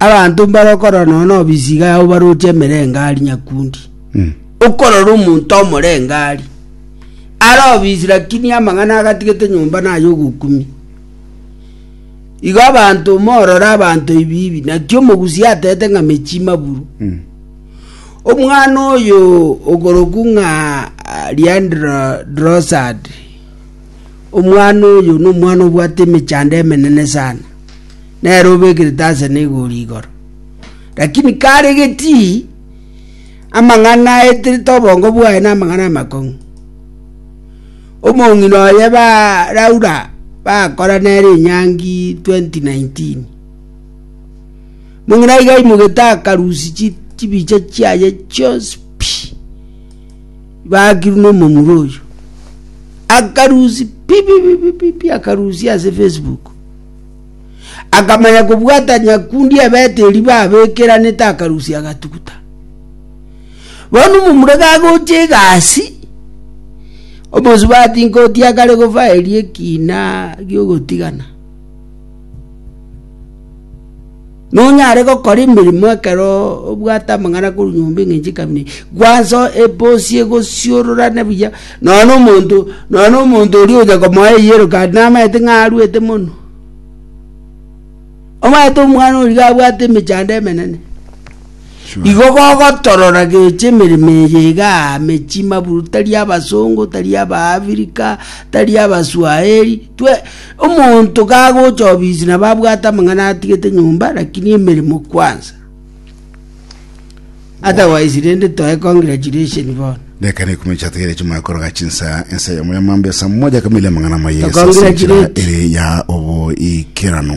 Abanto mbare okorora nonya nobisiga yabo baroche emerengari nyakundi. Okorora omonto omorengari. Are obisi lakini amang'ana agatigete nyomba naye ogokumi. Igo abanto morore abanto ibibi naki omogusi atete ng'a mechi maburu. Omwana oyo ogoroku ng'a ah, Leandro Drosad. Omwana oyo nomwana obwate emechando emenene sana. nere obekerete ase negoori igoro. Lakini kare getii amang'ana aeterete obongo bwaye na amang'ana amakong'u. Omong'ina oye ba Laura bakora nere enyangi 2019. Mong'ina iga aimogete akarusi chi- chibicha chiaye chionsi pi baakirwe na omomura oyo. Akarusi pi pi pi pi pi pi akarusia ase Facebook. Akamanya kobwata nyakundi Abeteli babekeranete akarusia agatuguta. Bono omomura gagocha egasi, omosubati nkoti akare gofa eria ekina giogotigana. Nonyare gokora emeremo ekero obwate amang'ana korwa nyomba eng'encho ekabina eye, gwansa ebosie egosiororane buya, nonya na omonto, nonya na omonto oria ogocha komoa eyellow card namaete ng'a arwete mono. Omanyete omwana oria iga abwate emechando emenene, igo gogotorora gecha emeremo eye igaa mechie maburu tari abasongo, tari abaafrika, tari abaswahiri. Twe, Omonto kagocha obisi nabo abwate amang'ana atigete nyomba, lakini emeremo kwansa. Otherwise rende toe congratulation bono. Deka na ikumi chiatigere chimanye koroga chinsa ense ya moyamambe sa moja kamili amang'ana maye ase enchera Congratulate. ere ya oboikeranu.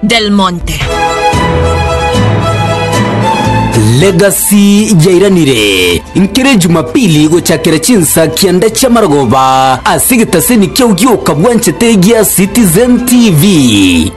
Del Monte. Legacy yairanire nkere Jumapili gochakera chinsa kianda chia marogoba ase egetaseni kia Ogiokabwanchete gia Citizen TV.